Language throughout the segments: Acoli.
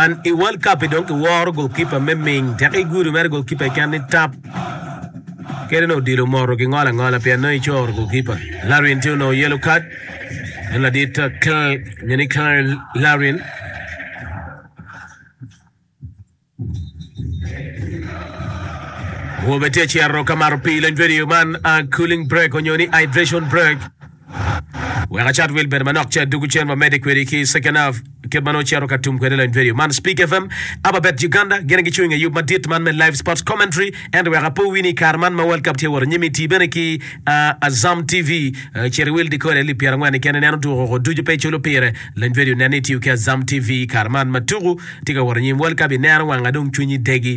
An i World Cup-pi dong kiworo golkipa me Ming teka i gudo mere golkipa i ken ni tap. Kede onongo odilo moto ki ngolo angola pien nongo icoro golkipa. Larin tye onongo yellow card. En ladit uh, Cl- nyo ni Cl- Larin. Awobe tye cito ka mato pii leng video man uh, cooling break onyo ni hydration break. Wek acat wil bene manok ce dugu cen wamede kwedi ki second half kit ma nongo cito ka tum kwede lany radio man Speak FM aba bet Uganda gin gicu inge yub madit man me live sports commentary ento wek apo wini ikare man ma world cup tye wot anyim iti bene ki uh, Azam TV uh, cit iwil decoder lib pyera ngwen ikene neno tuko koko ducu pe iculo pire lany radio nen ni itiyo ki Azam TV ikare man ma tuku tye ka wot anyim world cup ineno wanga dong cwinyi degi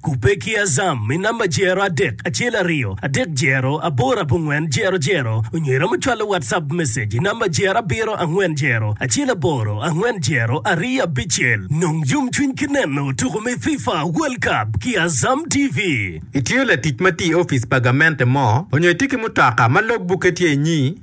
Kubbe ki Azam i namba jero adek acel aryo adek jero aboro abongwen jero jero onyo iromo cwalo WhatsApp message i namba jero abiro angwen jero acel aboro angwen jero aryo abicel. Nong yomcwiny ki neno tuko me FIFA World Cup ki Azam TV. Itiyo latic ma tye i opic pa gamente mo, onyo itye ki mutoka ma logbukke tye inyi,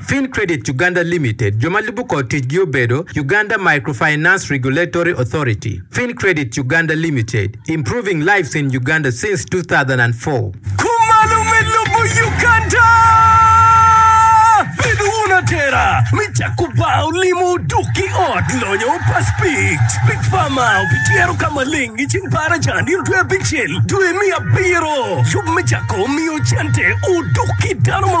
Fin Credit Uganda Limited, jo ma lubo kor ticgi obedo, Uganda Microfinance Regulatory Authority, Fin Credit Uganda Limited, improving lives in Uganda since 2004. Kumalo me lobo Uganda! Bedo wun atera me cako bar olimo dok ki ot lonyo pa Speed. Speed Pharma obityero ka maleng i ceng par acan nino dwe abicel dwe me abiro. Yub me cako miyo cente odok ki dano ma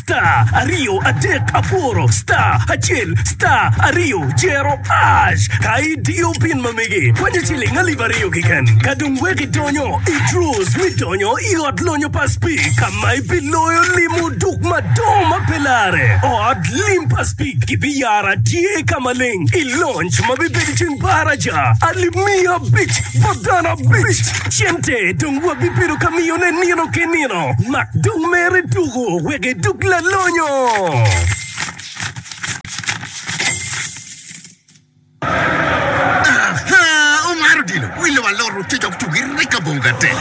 Star aryo adek abworo star acel star aryo cero ash ka idiyo pin ma mege kwanyo ciling alip aryo keken ka dong wek idonyo i draws me donyo i ot lonyo pa Spik ka ma ibiloyo limo duk madongo ma pe lare. Ot lim pa Spik gibiyara tye ka maleng i lonc ma bibedo ceng Baraja alip miya abic bot dano abic. Cente dong wabibedo ka miyone nino ki nino mak dong mere tuku. wek edug lalonyo. Aha! Omar odilo wi lobo aloro te dok tugi rek abongo gate.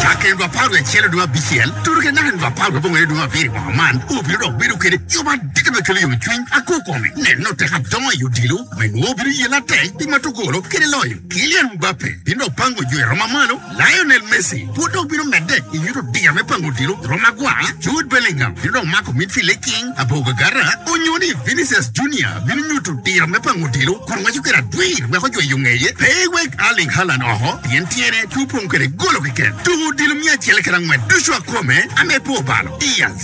Cakke nwa apar wiye acel onongo abicel, turu kede naka nwa apar wiye abongo onongo abiri woko man, obino dok bedo kede yom adada me kelo yomcwiny akwo kome. Neno tek adongo i odilo me nwo bino yela atek pi matugolo kede loyo. Kylian Mbappe bino dok pango jo i romo ma malo. Lionel Messi pud dong bino medde i nyut odira me pango odilo i Roma gwa, Jude Bellingham bino dong mako midfield-de king abor gagata, onyo ni Vinicius Junior bino nyuto odira me pango odilo kun waco kwede adwir wek ojweyo ngeye pe eweg Erling Haaland oko pien tyene pe opong kwede golo keken. Tuko odilo miya acel kede angwen ducu akome ame po balo. Diaz.